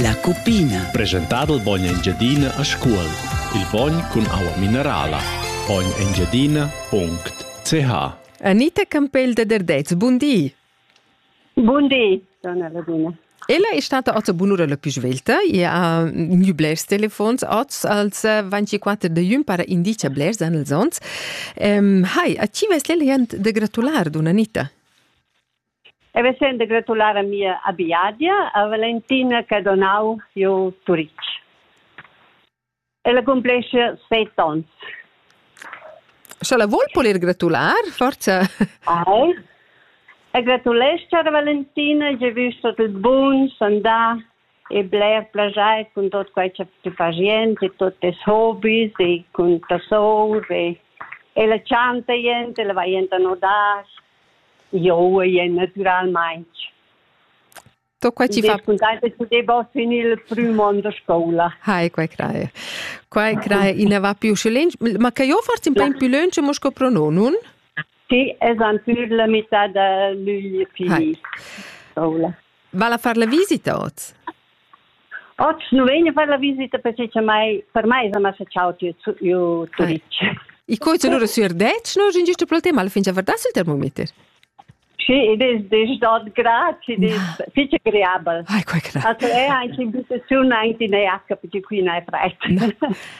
La cupina. Presentado il bogn Engiadina a Scuol. Il bogn cun aua minerala. Bognengiadina.ch Anita Campell de Derdez, bun di. Bun di, donna Ladina. Ella è stata oz bunura la più svelta, e ha miu blers telefons oz als 24 de iun para indicia blers an els ons. Um, hai, a ci vesle de gratular, donna Anita? E vesend de gratular a mia abiadia, a Valentina che donau jeu Turitg. Ella cumplesce seit ons. Scha la vuol polir gratular, forza? Ai. E gratulescia a Valentina, j'ai vu tot il bun, s'andar e bler plagiar con tot quai che tu fai niente, tutti i hobbies e con ta sour e e la chanta niente, la va niente a nodar Jeu ei naturalmein To quai ti fa contenta che ti vas in il prüm on da scoula. Hai, quai craie. Quai craie ina va più schelent. Ma che io forse un po' più lunch mo sco prononun? Sì, es an pür la metà da luglio fini. Va a far la visita oz? Otg nu vegna far la visita precisamaing per meis ama s'ha chau tü giu Turitg. I coiz lura sü Ardetsch, no in giusto pel tema alla fin cha verda sul termometer. Sì, id es desch dot grad, id es fich agreabel. Ai, quai che da. Also è anche in situaziun anche in EH, perché qui non è fred.